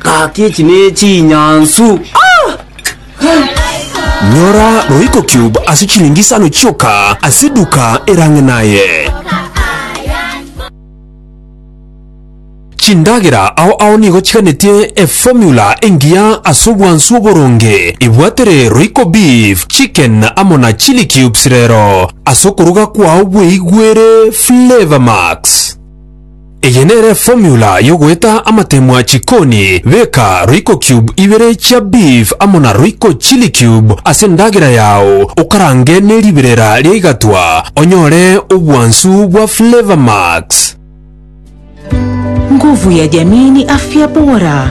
Gaki echi nechinyansu. Nyora Royco Cube ase chilingi isano chioka ase eduka erang'e naye. Chindagera ao ao nigo chiganetie eformula engiya ase obwansu oboronge. Ebwatere Royco Beef, Chicken amo na Chilli Cubes rero ase okoruga kwao bweigwere Flavour Max. Eye nere formula yogoeta amatemwa chikoni, beka royco cube ibere chia beef amo na royco chili cube ase endagera yao okarange ne riberera ria igatwa onyore obwansu bwa flavor max. Nguvu ya jamii ni afya bora.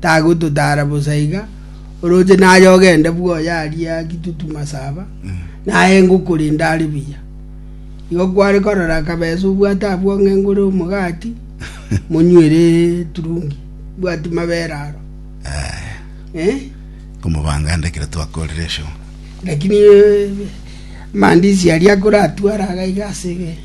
Tagototara bosa iga, oroche naye ogende bwoye aria gitutu masaba, naye ngokorenda are buya. Igo kware korora akabesa obwate abwo ng'a engure omogati, monywere eturungi, mbwati mabere aro. Eh? Omobanga nde ekero twakorire show. Lakini eh, mandisi aria akoratwara agaiga ase ge.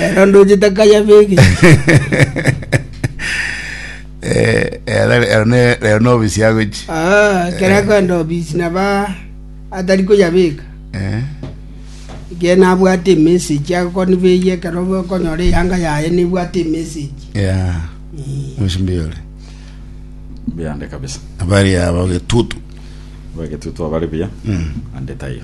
Ero ndoche takayabege. Eh, ero ero ne- ero nobisi agochi Ah, ekero akoenda obisi naba atari koyabeka Eh, iga nabwate emessage agokonibeyia ekero okonyora eyanga yaye nebwate emessage ya mushimbi yore Mbiande kabisa. abari aba getutu Bagetutu abari buya. Mm. Ande taiyo.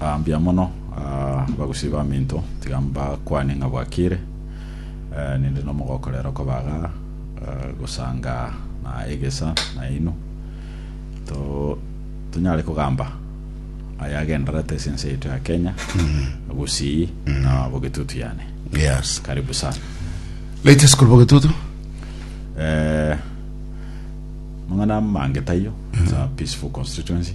Ah, mbuya mono ah, abagusii baminto tiga mbakwane ng'a bwakire eh, ninde nomogoko rero kobaga eh, gosanga na egesa naino to tonyare kogamba aya agenderete ase ense yaito ya kenya gusii na bogetutu yane yes karibu sana latest kuri bogetutu eh, mang'ana mange taiyo it's a peaceful constituency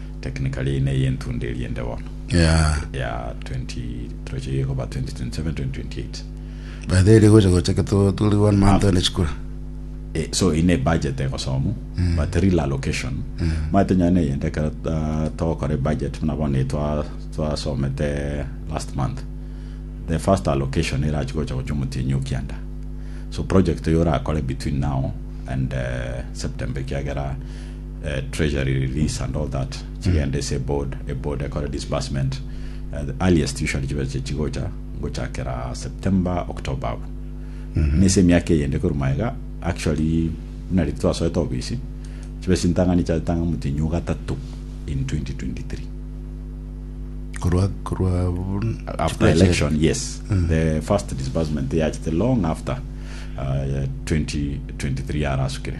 Technically eye neye entunda eria ende bono Yeah. ya 20 troche ye koba 2027 2028 By the way, rigocha gocha ke tu- tuli one month ene chikura. Eh, so ine budget egosomu but real allocation maete nyane yende ekero ta- togokora budget buna bono eye twa- twasomete last month the first allocation erachi gocha gocha omotienyi okianda so project oyo orakore between now and eh, september ekiagera treasury release and all that chigende ase eboard eboard ekore disbursement eh, the earliest usually chibe chi- chigocha ngochakera september october abo nese emiaka eyende korwa maega actually buna riri twasoete obisi chibe chintang'ani chiatanga motinyu gatatu in 2023 korwa korwa after election yes the first disbursement yachete long after uh, 2023 yarasukire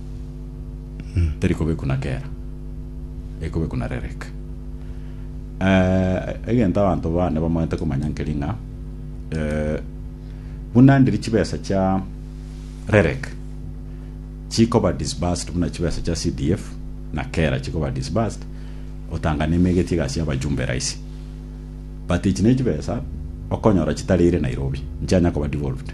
teri kobe kuna kera ekobe kuna rerek Eh, egento abanto bane bamanyete komanya nkeri ng'a eh, buna ndiri chibesa chia rerek chikoba disbursed buna chibesa chia CDF na kera chikoba disbursed otanga nemegetie gasi abajumbe raisi but ichi ne chibesa okonyora chitarire Nairobi nchianya koba devolved